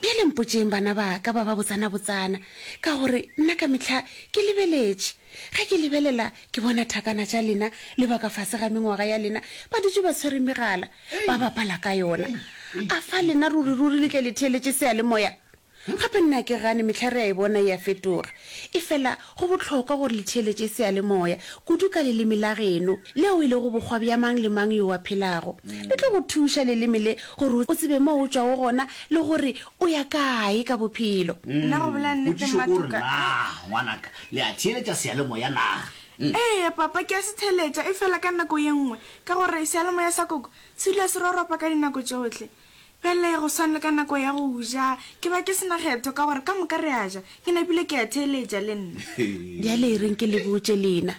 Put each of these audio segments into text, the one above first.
Bjale mpotšeng bana ba ka ba ba botsana-botsana, ka gore nna ka mehla ke lebeletše. Ge ke lebelela, ke bona thakana tša lena le ba ka fase ga mengwaga ya lena ba dutše ba tshwere megala, ba bapala ka yona. A fa lena ruri-ruri le tle le theeletše seyalemoya? Gape nna ke gane mehla re a e bona e a fetoga. Efela go bohlokwa gore le theeletše seyalemoya, kudu ka leleme la geno, leo e lego bokgwa bja mang le mang yo a phelago. Le tlo go thuša, leleme le, gore o tsebe moo o tšwago gona le gore o ya kae ka bophelo. Na go bolela nnete, Potšišo ke gore, Matuka? Na, ngwanaka, le a theeletša seyalemoya na? Eya, papa, ke a se theeletša, efela ka nako ye nngwe, ka gore seyalemoya sa koko se dula se roropa ka dinako tšohle. Bjale, go swana le ka nako ya go ja, ke ba ke se na kgetho, ka gore ka moka re a ja. Ke napile ke a theeletša le nna. Bjale e reng ke le botše lena.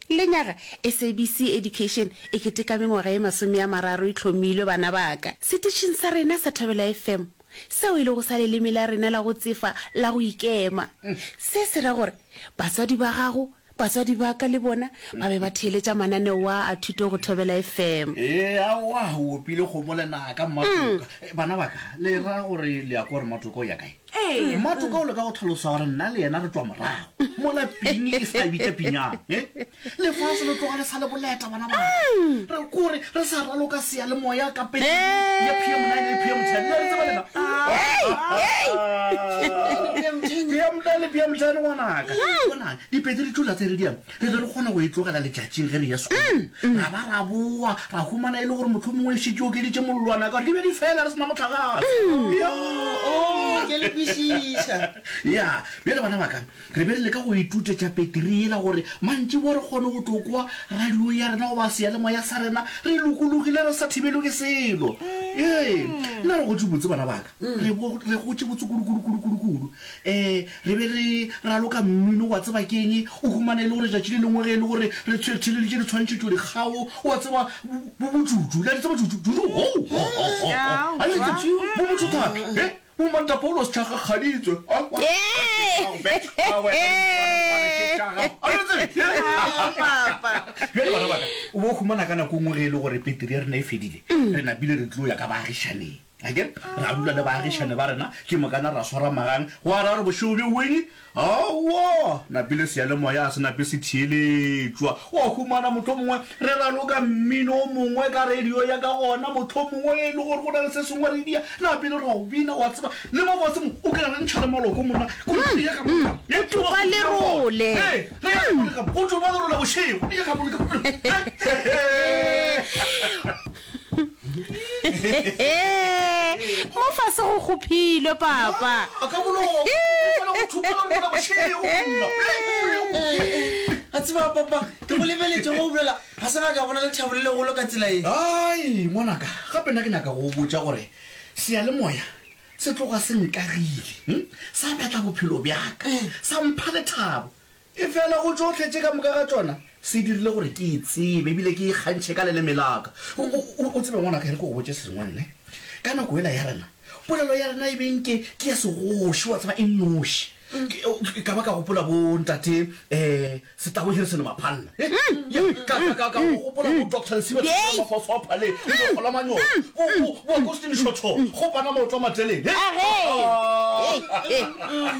Lenyaga, SABC Education e keteka mengwaga ye masome a mararo e hlomilwe, bana ba ka, setitšhing sa rena sa Thobela FM, seo e lego sa leleme la rena la go tsefa la go ikema. Se se ra gore batswadi ba gago Batswadi ba ka le bona ba be ba theeletša mananeo a a thuto go Thobela FM. Ee, aowa, o opile kgomo lenaka, Mmatoka. Bana ba ka, le ra gore le ya kwa gore Mmatoka o ya kae? Mmatoka o leka go tlhalosa gore nna le yena re tšwa morago, mola pini e sa bitša pinyana. Lefase le tloga le sa le boleta. bona ba re kore re sa raloka seya le moya ka pele ya pm 9 le pm 10 le re tsebalela pm 9 le pm 10 ngwanaka bona dipedi re tšola tse re diang re be re kgona go e tlogela letšatšing ge re ya sekolo ra ba ra boa ra humana e le gore motlho mongwe e šitše o keditše mollwana ka gore di be di fela re sena motlhagase ya bjale bana baka Re be re leka go ituta tša Peteri yela gore mantšiboa re kgone go tlo kwa radio ya rena goba seyalemoya sa rena re lokologile re sa thibelwe ke selo. Ee, nna re gotše botse bana ba-ka. Re bo re gotše botse kudu-kudu-kudu-kudu-kudu. Ee, re be re raloka mmino, wa tseba ke'ng, o humana e le gore tšatši le lengwe ge e le gore re tshwe re theleleditše ditshwantšhetšo dikgao, wa tseba, bo, bo bojuju. Le a di tseba juju, juju, hou, ho, ho, ho, ho, Aowa. Ga le di tsebe, bo botho thata. He, Bomatla Paulos Tšhagakgaditswe a kwa Tšechago Bek a wela le Moswana Mokwana Tšechago a lo tsebe Aa papa Bjale bana baka o bo humana ka nako ngwe ge e le gore peteri ya rena e fedile re napile re tlo ya ka baagišaneng akere ra dula le baagišane ba rena ke mokana ra swara magang gwa ra re bošego bjo bongwe Aowa! Napile seyalemoya ga se nape se theeletšwa. Wa humana, mohlomongwe re raloka mmino o mongwe ka radio ya ka gona, mohlomongwe e le gore go na le se sengwe re dia, napile ra o bina, wa tseba. Le mo fase mo, o ka re ntšha le maloko monna. Kgoši ya ga Moleka. Mm, o tlo ba lerole. Ee, re ya ga Moleka mo. O tlo ba lerole bošego. Re ya ga Moleka mo. He-he-he. mo fase go kgophilwe papa a tseba papa ke go lebeletse go bolela ga se ga ka bona lethabo le legolo ka tsela e ai ngwanaka gape nna ke nyaka go botsa gore seyalemoya se tloga se nkagile hm? sa batla bophelo bjaka sa mpha lethabo Efela go tšohle tše ka moka ga tšona, se dirile gore ke e tsebe e bile ke e kgantšhe ka leleme la ka. O tsebe, ngwanaka, e re ke go botše sengwe, nne. Ka nako yela ya rena, polelo ya rena e be nke ke ya segoši, wa tseba, e nnoši. Ke, ka ba ka gopola bo Ntate, ee, Setabo Hirison Maphalla. He, ya, ka, ka, ka, ka go gopola bo Doctor Lesiba Tshifela Mafosopha le, le bo Kgola Manyoro, bo, bo, bo Agostini Shotho, go Panama Otlwa Mateleng. He, ha, ha, ha.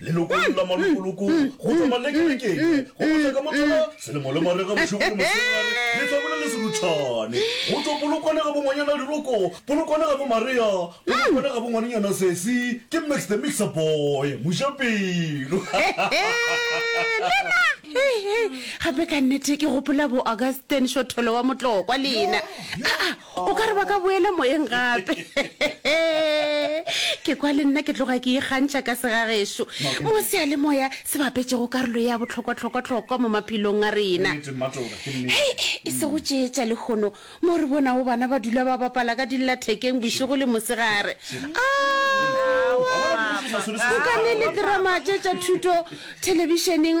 Lelokong la malokoloko go tšwa malekelekeng go feta ka mohlala selemo le mariga bošego le mosegare le hlabole le serutšhane go tšwa polokwane ga bongwanyana liroko polokwane ga bomaria polokwane ga bongwanenyana sesi ke max the mixer boy mojapelo gape ka nnete ke gopola bo augustin šotholo wa motlokwa lena o ka re ba ka boela moyeng gape ke kwa le nna ke tloga ke ikgantšha ka segagešo mo sealemoya se bapetšego karolo ya bohlokwa-hlokwa-hlokwa mo maphelong a rena hei e se go tšeetša lekgono mo re bonago bana ba dula ba bapala ka dillathekeng bošego le mosegare o ka ne le terama tše tša thuto thelebišeneng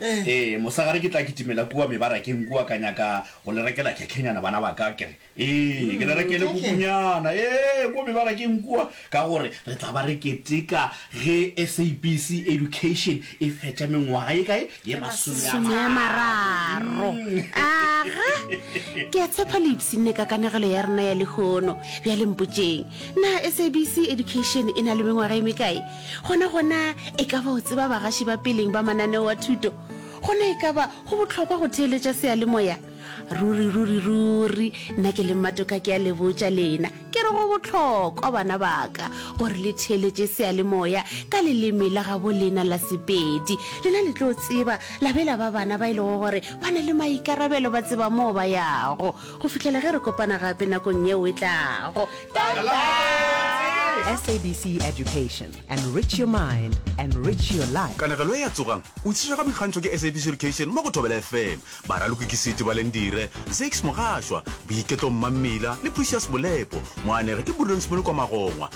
Ee, mosegare ke tla kitimela kua mebarakeng kua ka nyaka go le rekela khekhhenyana, bana ba ka. Ke re, Ee, ke le rekele kukunyana, ee, kua mebarakeng kua, ka gore re tla ba re keteka ge SABC Education e fetša mengwaga ye kae? Ye masomeamararo. Aga! Ke a tshepa le ipshinne ka kanegelo ya rena ya lehono. Bjale mpotšeng, Na SABC Education e na le mengwaga ye mekae? Gona gona, e ka ba o tseba bagaši ba peleng ba mananeo wa thuto. Gona e ka ba go bohlokwa go theeletša seyalemoya. Ruri, ruri, ruri! Nna ke le mmatoka ke a le botša lena, ke re go bohlokwa, bana ba ka, gore le theeletše seyalemoya ka leleme la gabo lena la Sepedi. Lena le tlo tseba, la be la ba bana ba e lego gore ba na le maikarabelo, ba tseba moo ba yago. Go fihlela ge re kopana gape nakong yeo e tlago. SABC Education, enrich your mind, enrich your life. Kanegelo e ya Tsogang! o tšiswa ka boikgantšho ke SABC Education mo go Thobela FM. Baraloki ke Siti Balendire, Zakes Mogashwa, Boiketlo Mmammila le Precious Molepo. Moanegi ke Burdens Molekwa Magongwa.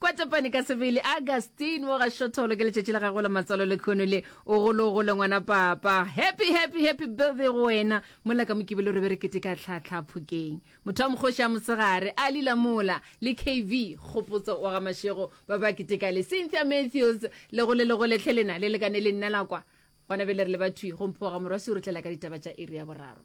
Kwatapane ka sebele Augustine mo ga Shotholo ke letšatši la gago la matswalo le khono le o golo o gole ngwana papa happy happy happy birthday go wena mola ka mokibelo re be re kete ka tlhatlha phokeng motho wa mokgoši a mosegare a lila mola le kv kgopotso wa ga mašego ba ba kete ka le Cynthia Matthews le gole le gole tlhe lena le lekane le nna la kwa gona be le re le bathwi go mphoga morwa se o re tlela ka ditaba tša iri ya boraro